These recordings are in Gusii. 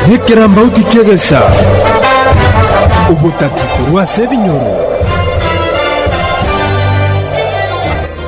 Nekerambauti ki'egesa, obotaki korwa ase ebinyoro.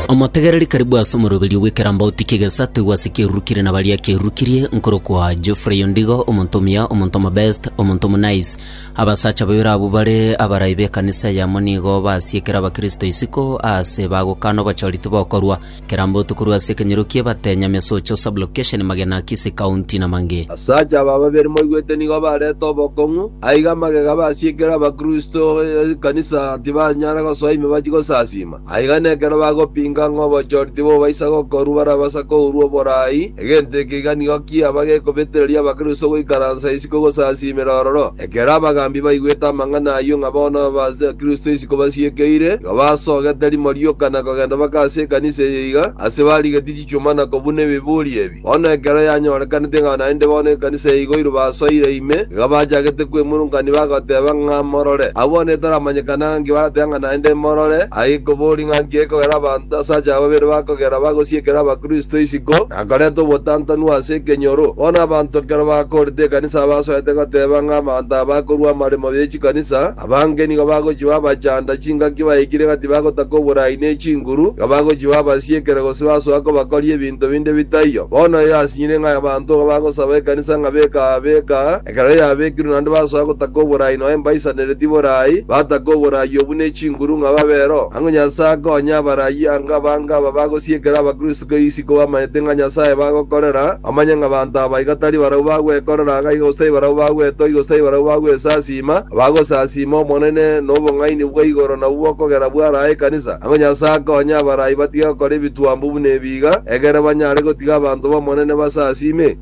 Omotegereri karibu ase omoroberio bw'ekerambauti ki'egesa toigwe ase kiarurukirie na baria kiarurukirie, nkorokwa Geoffrey Ondigo, omonto omuya, omonto omobest, omonto omonice. Abasacha babere abwo bare abarai b'ekanisa eyemo nigo basiekire abakristo isiko aase bagokana obochori tibokorwa. Kera mbotu korwa ase ekenyoro kie Bate, Nyamyasocho Sub-location, Magena Kisii County na mangĩ. Abasacha aba babere moigwete nigo barete obokong'u, aiga magega basiekere Abakristo b'ekanisa tibanyara gosoa ime bachie gosasiima. Aiga nekero bagopinga ng'a obochori tibobaisa gokorwa barabasa kourwa oboraai, Egento eke iga nigo kiaba gekobetereria Abakristo goikaransa isiko gosasiimera ororo. Ekero abagaambi baigwete amang'ana ayio ng'a bono Abakristo isiko basiekeire, igo basogete rimo rioka na kogenda baka ase ekanisa eye iga ase barigetie chichuma na kobuna ebiburi ebi. Bono ekero yanyorekanete ng'a naende bono ekanisa yaigoirwe basoire ime, iga bachagete kwemurungania bagoteeba ng'a, Morore, agwo bono etaramanyekana ng'a nki barateba ng'a Naende morore aye kobori ng'a nki ekogera abanto asacha babere bakogera bagosiekera Abakristo isiko, na koreta obotantanu ase ekenyoro. Bono abanto ekero bakoorete ekanisa basoete goteba ng'a abanto aba bakorua amaremo ye chikanisa, abange nigo bagochiba abachanda chingaki baikire gati bagotaka oboraai ne chinguru, igo bagochiba abasiekere gose basoa kobakoria ebinto binde bitaiyo. Bono oyo asinyire ng'a abanto igo bagosaba ekanisa ng'a beka aa, beka aa, Ekero yabekirwe naende basoa gotaka oboraai noe mbaisaniretie boraai, bataka oboraai obwo ne chinguru ng'a babe ero. Ang'o Nyasae akonye abaraai anga abange aba bagosiekera Abakristo keyio isiko bamanyete ng'a Nyasae bagokorera, bamanye ng'a abanto aba iga tari barabwo bagwekorera aga iga gose tari barabwo bagwetogia gose tari barabwo bagwesasiima, abagosasiima Omonene nobong'aini bwa igoro nabwo bokogera bwarae ekanisa. Ang'o Nyasae akonye abaraai batige gokora ebituombu buna ebi iga, egere banyare gotiga abanto b'Omonene basasiime?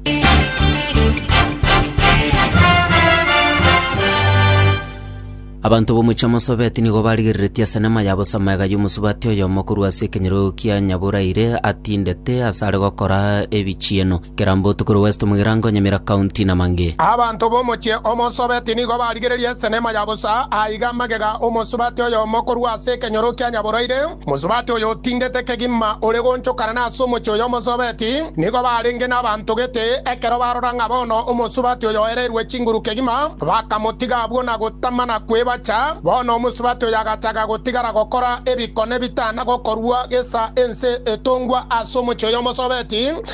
Abanto b'omochie o Mosobeti nigo barigereretie esanema ya bosamo egaya omosubati oyomo korwa ase ekenyoro kia Nyaboraire atindete asare gokora ebichieno. Kerambotu korwa West Mugirango, Nyamira County na mang'e. Abanto b'omochie o Mosobeti nigo barigereretie esanema ya bosa aiga magega omosubati oyomo korwa ase ekenyoro kia Nyaboraire. Mosubati oyo otingete kegima ore goonchokana nase omochie oyo omosobeti. Nigo barenge n'abanto gete ekero barora ng'a bono omosubati oyo oereirwe chinguru kegima, bakamotiga abwo na gotama na kwebacha. Bono omosubati oyo agachaga gotigara gokora ebikone bitana gokorua gesa ense etongwa ase omochie oyo omosobeti.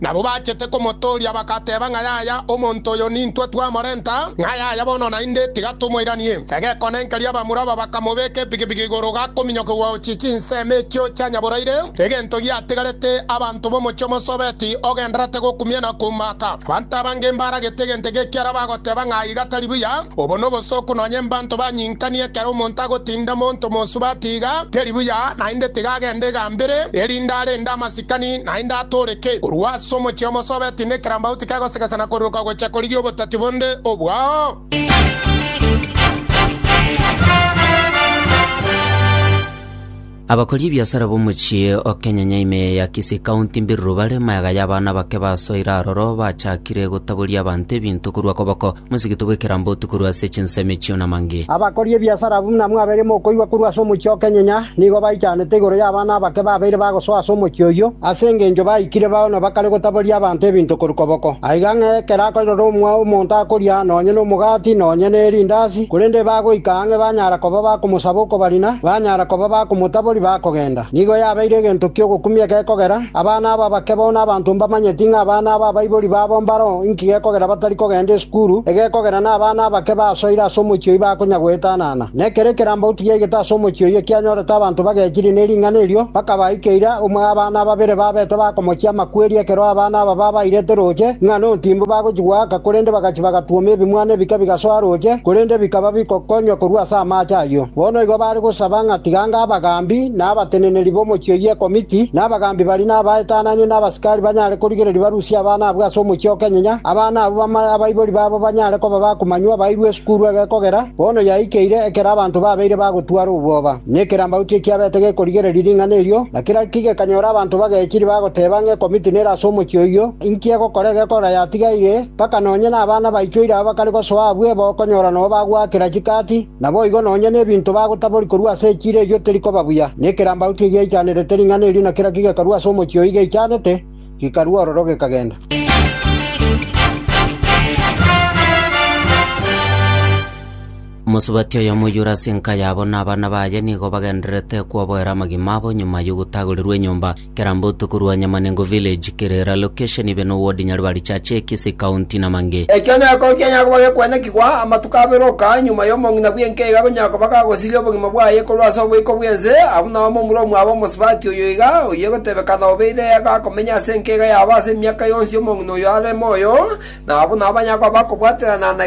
Nabo bachete komotooria, bagateeba ng'a yaya omonto oyo nintwe twamorenta, ng'a yaya bono naende, tiga tomoiranie. Egekone nkeria abamura aba bakamobeka epikipiki igoro gakominyokigwa gochia chinsemo echio chia nyaboraire, egento giatigarete abanto b'omochie omosobeti ogendererete gokumia na koumaaka. Abanto abange mbaragete egento eke ekiara bagoteeba ng'a iga tari buya. Obo nobosooku nonya embanto banyinkanie ekero omonto agotinda monto mosubati iga, teri buya, naende tiga agende igambere, erinde arende amasieri. Ikani naende atooreke. Korwa ase omochie omosobe tinde ekerambauti kegosegesa na koruruka gocha korigia obotati bonde obwao. Abakori ebiasara b'omochie o Kenyanya ime ya Kisii County mbiruru bare mayaga y'abana bake basoire aroro bachakire gotaboria abanto ebinto korwa koboko Moisike togwe ekerambo tokorwa ase chinsemi echio namange. Abakori ebiasara abwo buna mwabeire mokoigwa korwa ase omochie o kenyenya, nigo baichanete igoro y'abana abake babeire bagosoa ase omochie oyio, ase engencho baikire baonwa bakare gotaboria abanto ebinto korwa koboko. Aiga ng'a ekero akoirora omwa omonto akoria nonye nomogati, nonye nerindasi, korende ebagoika ang'e banyara koba bakomosaba okobarina, banyara koba bakomotabori bakogenda. Nigo yabeire egento ki'ogokumia egekogera abana aba abake bo na abanto mbamanyeti ng'a abana aba abaibori babo mbaro inki gekogera batari kogenda esukuru, egekogera na abana abake basoire ase omochie oyio bakonya goetanana. Na ekero ekerambe otigaigete ase omochie oyio kianyorete abanto bagechirie ne ring'ana erio, bakabaika eira, omwe abana babere babete bakomochia amakweri ekero abana aba babairete roche ng'a nontimbu bagochi goaka, korende bagachia bagatuoma ebimwana ebike bigasoa roche, korende bikaba bigokonywa korwa ase amaache ayio. Bono igo bare gosaba ng'a tiga ange abagaambi na abateneneri b'omochie oyio ekomiti, na abagaambi baria na abaetanania na abasikari banyare korigereria barusie abana abwo ase omochie o kenyenya, abana abwo bamae abaibori babo banyare koba bakumanywa bairwe esukuru egekogera. Bono yaikeire ekero abanto babeire bagotwara obwoba, na ekerambaoti ekiabete gekorigereria ring'ana erio, na kera kigekanyora abanto bagechiri bagoteba ng'a ekomiti nere ase omochie oyio, inki egokora egekogera yatigaire, mpaka nonye nabana baichoire aba bakare gosoa abwo eba okonyora noo bagoakera chikati, Naboigo nonya nebinto bagotaboria korwa ase echiira eyio teri koba buya, na ekerambau tigiaichanerete ring'ana erio na kera kigekarua ase omochie oyio geichanete, gikarua ororo gekagenda. Omosubati oyomo oyoire ase enka yabo na abana baye nigo bagendererete koboera amagima abo nyuma y'ogotagorirwa enyomba. Keramboto korwa Nyamanengo Village, Kirera Location ibe no Ward Nyaribari Chache, Kisii County Namange. Ekio nero kianya koba gekwenyekigwa amatuko abere oka nyuma y'omong'ina bw'enke iga gonya koba gagosiria obogima bwaye korwa ase oboiko bw'ense, abwo nao momura omwabo omosubati oyo iga, oyio egotebekana obeire iga akomenyia ase enke iga yabo ase emiaka yonsi y'omong'ina oyo are moyo, na abwo nao banya koba bakobwaterana na